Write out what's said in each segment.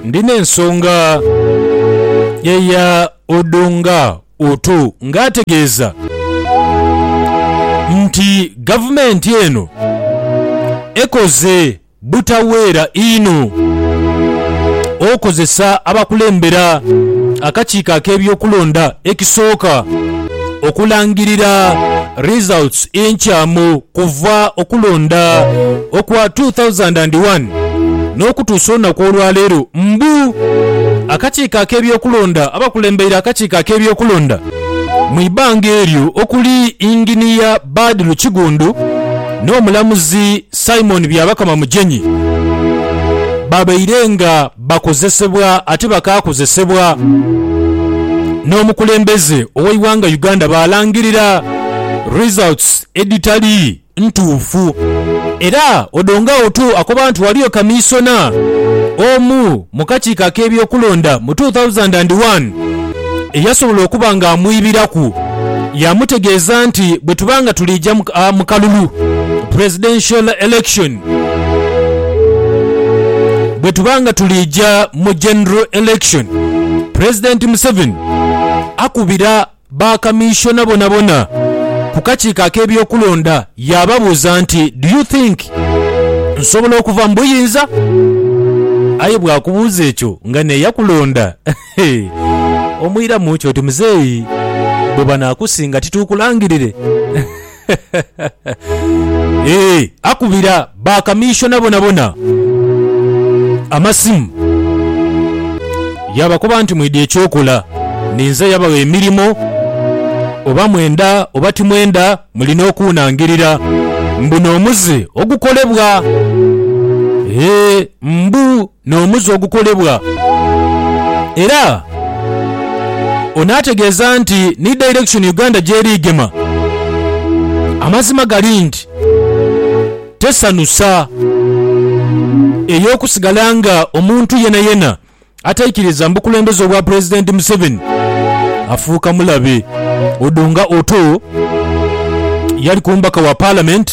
Ndi n'ensonga, eya Odonga Otu ng'ategeeza nti gavumenti eno ekoze butaweera inho okozesa abakulembera akakiiko ak'ebyokulonda ekisooka okulangirira results enkyamu. Kuva okulonda okwa 2001 n'okutuusa olunaku olwaleero, mbu akakiiko ak'ebyokulonda abakulembeire akakiiko ak'ebyokulonda mu ibanga eryo okuli Yinginiya Badiru Kigunddu n'omulamuzi Simon Byabakama Mugyenyi babaire nga Bakozesebwa ate bakaakozesebwa n'omukulembeze ow'eighanga Uganda baalangirira results edhitali ntuufu era Odongo Outu akoba nti waliyo kamiisona omu mu kakiiko ak'ebyokulonda mu two thousand and one eyasobola okuba ng'amwibiraku yaamutegeeza nti bwetuba nga tuliija mu kalulu, presidential election, Bwe tuba nga tuliija mu General Election, Pulezidenti Museveni akubira ba Kamiisona bonabona ku kakiiko ak'ebyokulonda yaababuuza nti, Do you think nsobola okuva mu buyinza? Aye bw'akubuuza ekyo nga n'eyakulonda omwiramu ki oti, Muzeeyi, bwe banaakusinga tituukulangirire? Eeh, akubira ba kamishona bonabona amasimu yaabakoba nti mwidha eky'okola ninze yabagha emirimo oba mwenda oba timwenda mulina okuunangirira mbu n'omuze ogukolebwa. Eeh, mbu N'omuze ogukolebwa. Era onaategeeza nti ni direction Uganda gy'eri egema. Amazima gali nti tesanusa ey'okusigala nga omuntu yenayena ataikiriza mu bukulembeze obwa Pulezidenti Museveni afuuka mulabe. Odonga Otoo yali ku mbaka wa Parliament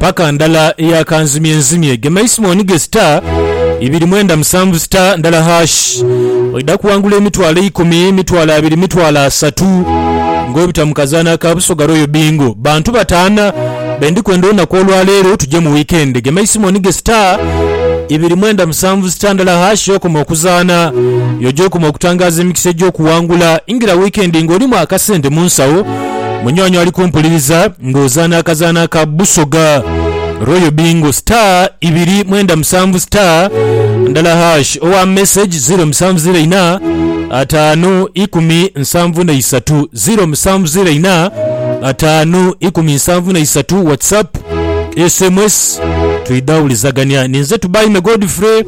paka ndala eya kanzimye nzimye gemaismoni ge star ibiri mwenda musanvu star ndala hash oidha kuwangula emitwalo eikumi mitwalo abiri mitwalo asatu nga obita mukazana aka busoga royal bingo bantu batana bendi kwenda olunaku olwalero tuje mu weekend gemaismoni ge star ibiri mwenda musanvu star ndala hash yokoma okuzana yoja okoma okutangaza emikisa ejokuwangula ingira weekend nga olimu akasente munsawo Munywanyi ali kumpuliriza ng'ozaana akazaana aka Busoga Royal Bingo star ibiri mwenda musanvu star ndala hash owa message ziro musanvu ziro ina ataanu ikumi nsanvu na isatu ziro musanvu ziro ina ataanu ikumi nsanvu na isatu whatsapp sms twidhawulizagania ninze tubaime Godfrey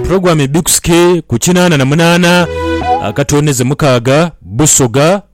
program ebikusike ku kinaana na munaana akatooneze mukaaga Busoga